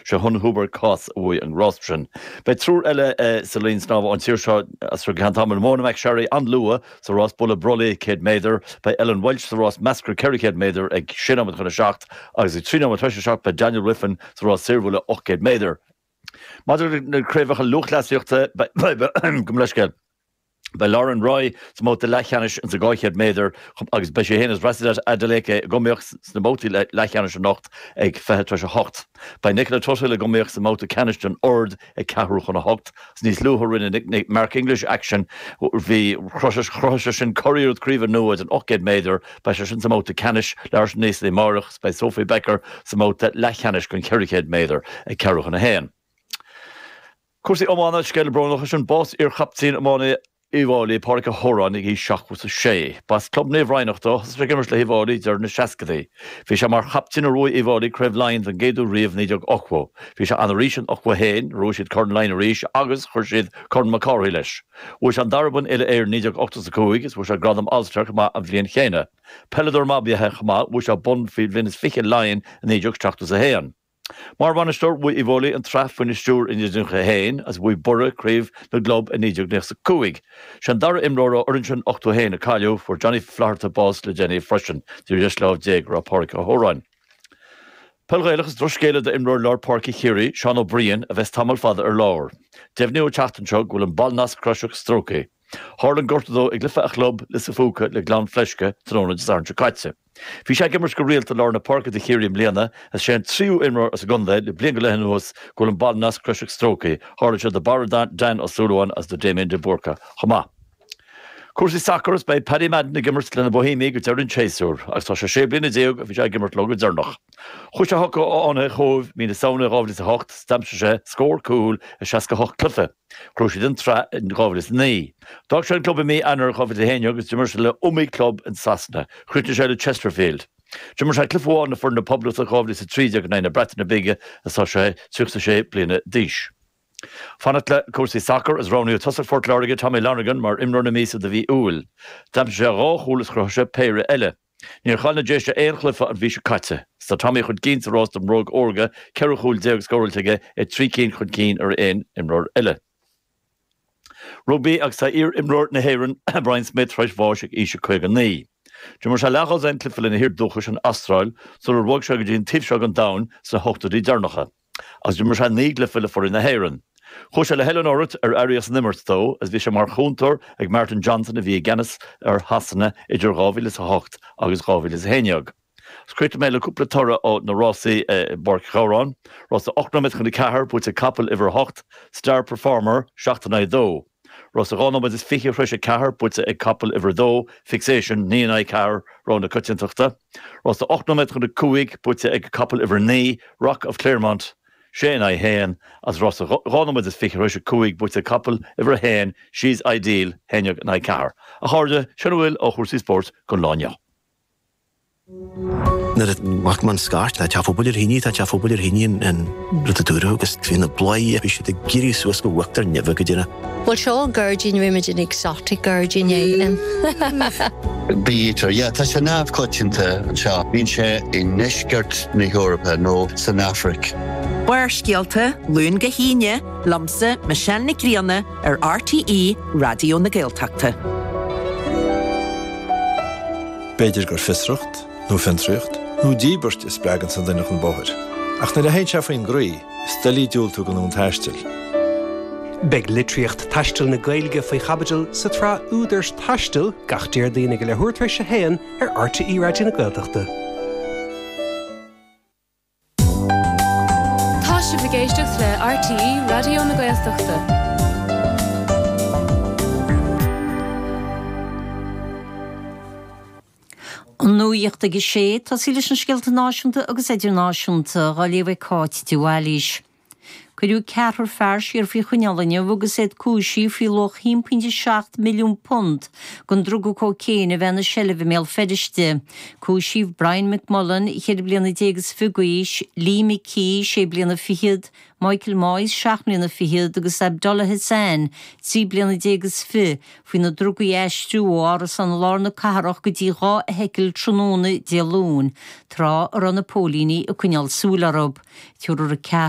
Sé Hun Hubert Kós a bhuaigh an rás sin. Beidh triúr eile sa linn snámha ón tír seo as seo go ceann tamaill, Mona McSharry an-luath sa rás bualadh brollaigh 100 méadar, beidh Ellen Walshe sa rás measctha 400 méadar ag sé nóiméad chun a seacht agus ag trí nóiméad tar éis a seacht beidh Daniel Wiffen sa rás saorbhualadh 800 méadar. Maidir le na craobhacha lúthchleasaíochta, beidh. Gabh mo leithscéal. Beidh Lauren Roy sa mbabhta leathcheannais sa 200 méadar agus beidh sí féin agus Rhasidat Adeleke, ag iomaíocht sna babhtaí leathcheannais anocht, ag 20 tar éis 8. Beidh Nicola Tuthill ag iomaíocht sa mbabhta ceannais den ord ag ceathrú chun a hocht. Is níos luaithe a rinne Mark English action, bhí chruthaigh seisean curiarracht craoibhe nua den 800 méadar, beidh seisean sa mbabhta ceannais, leathuair tar éis a naoi amárach, agus beidh Sophie Becker sa mbabhta leathcheannais den 400 méadar ag ceathrú chun a haon. Cúrsaí iomána, scéala brónach is sin bás iar-chaptaen iomána Uíbh Fháilí, Pádraic Ó hÓráin, ag aois 76. Ba as club Naomh Raghnach dó, thosaigh sé ag imirt le hUíbh Fháilí i deireadh na seascadaí. Bhí sé mar chaptaen nuair a bhuaigh Uíbh Fháilí Craobh Laighean den gcéad uair riamh i 1980. Bhí sé ann arís in 81, nuair a bhuaigh siad Corn Laighean arís agus chuir siad Corn Mac Cárthaigh leis. Bhuaigh sé an dara bonn Uile-Éireann i 1985 is bhuaigh sé gradam All Star chomh maith an bhliain chéanna. Peileadóir maith ab ea é chomh maith, bhuaigh sé bonn faoi bhliain is fiche Laighean i 1971. Mar bhainisteoir bhuaigh Uíbh Fháilí an tsraith faoina stiúir i 1991 agus bhuaigh Biorra craobh na gclub i 1995. Sé an dara imreoir ó fhoireann sin 81 a cailleadh. Fuair Johnny Flatharta bás le déanaí freisin. Ar dheis lámh Dé go raibh Pádraig Ó hÓráin. Peil Ghaelach Is drochscéala do imreoir lár páirce Chiarraí, Seán Ó Briain, a bheas tamall fada ar lár. Deimhníodh an tseachtain seo go bhfuil an ballnasc croiseach stróicthe. Tharla an gortú dó ag cluiche a chlub, Lios a' Phúca le Gleann Fleisce, tráthnóna Dé Sathairn seo caite. Bhí sé ag imirt go rialta i lár na páirce do Chiarraí i mbliana agus is é an tríú imreoir as an gcontae le bliain go leith anuas go bhfuil an ballnasc croiseach stróicthe. Tharla sé do Barra Dan Ó Súilleabháin agus do Damien de Búrca chomh maith. Cúrsaí sacair agus beidh Paddy Madden ag imirt le na Boihéamaigh go deireadh an tséasúir agus tá sé sé bliana déag ó bhí sé ag imirt leo go deireanach. Chuaigh sé chucu ó fhoireann Chóbh mí na Samhna 2008 agus d'aimsigh sé scór cúl i 68 cluiche. Bhuaigh siad an tsraith in 2009. D'fhág sé an club i mí Eanáir 2011 agus d'imir sé le iomaí club in Sasana. Chríochnaigh sé le Chesterfield. D'imir sé cluiche amháin le foireann na Poblachta in 2013 in aghaidh na Breataine Bige is tá sé 36 bliana d'aois. Fanacht le cúrsaí sacair is roghnaíodh tosaí Phort Láirge Tommy Lonergan mar imreoir na míosa do mhí Iúil. D'aimsigh sé dhá chúl is chruthaigh sé péire eile. Níor chaill na Déise aon chluiche an mhí seo caite. Is tá Tommy chun cinn sa rás don mBróg Órga, ceithre chúl déag scóráilte aige, é trí cinn chun cinn ar aon imreoir eile. Rugbaí agus tá iar-imreoir na hÉireann, Brian Smith, tar éis bháis ag aois a 59. D'imir sé leathdhosaen cluiche lena thír dúchais, an Astráil, sular bhog sé go dtí an taobh seo den domhain sna hochtóidí deireanacha. Agus d'imir sé naoi gcluiche le foireann na hÉireann. Chuaigh sé le hoiliúint ar éirí as an imirt dó agus bhí sé mar chúntóir ag Martin Johnson a bhí i gceannas ar Shasana idir 2008 agus 2011. Críochnóidh mé le cúpla toradh ó na rásaí i bPáirc Ghabhráin, Rás a 8 nóiméad chun a ceathair buaite ag capall uimhir a hocht, Star Performer, seacht in aghaidh a dó. Rás a dhá nóiméad is fiche tar éis a ceathair, buaite ag Capall Uimhir 2, Fixation, naoi in aghaidh ceathair, Rogha na Coitiantachta. Rás a ocht nóiméad chun a cúig, buaite ag Capall Uimhir 9, Rock of Clermont, sé in aghaidh a haon, agus rás a dhá nóiméad is fiche tar éis a cúig, buaite ag Capall Uimhir 1, She's Ideal, haon déag in aghaidh ceathair. A chairde, sin a bhfuil ó chúrsaí spóirt don lá inniu. Nuair a chuala mé an scairt, tá teach pobail ar thine, tá teach pobail ar thine, an rud a dúradh agus bhí na bladhairí bhí siad ag éirí suas go huachtar nimhe go dtí na. Bhuel seo gairdín roimid an exotic gairdín éigin. Bítear, yeah, tá sé neamhchoitianta anseo. Bíonn sé i ndeisceart na hEorpa nó san Afraic. Barrscéalta, Luan go hAoine, liomsa, Michelle Nic Grianna, ar RTÉ Raidió na Gaeltachta. B'fhéidir gur fiosracht, nó fiontraíocht, nó díbirt a spreagann sa duine chun bóthair. Ach nuair a théann sé faoin gcroí, is doiligh diúltú d'fhonn an taistil. Beidh litríocht taistil na Gaeilge faoi chaibidil sa tsraith Údar Taistil gach Déardaoin ag a leathuair tar éis a haon ar RTÉ Raidió na Gaeltachta. Tá sibh ag éisteacht le RTÉ Raidió na Gaeltachta. An nuacht ag a sé, tosóidh leis na scéalta náisiúnta agus idirnáisiúnta á léamh ag Cáit de Bhailís. Cuireadh ceathrar fear siar faoi choinneáil inniu agus iad cúisithe faoi luach £1.7 milliún den druga cóicéin a bheith ina seilbh i mBéal Feirste. Cúisíodh Brian McMullan, ceithre bliana déag is fiche d'aois, Lee McKee, sé bliana fichead, Michael Moyes, seacht mbliana fichead, agus Abdullah Hassan, trí bliana déag is fiche, faoi na drugaí a aistriú ó árasán i lár na cathrach go dtí dhá fheithicil tráthnóna Dé Luain, tráth a raibh na póilíní ag coinneáil súil orthu. Cíoradh ceathrar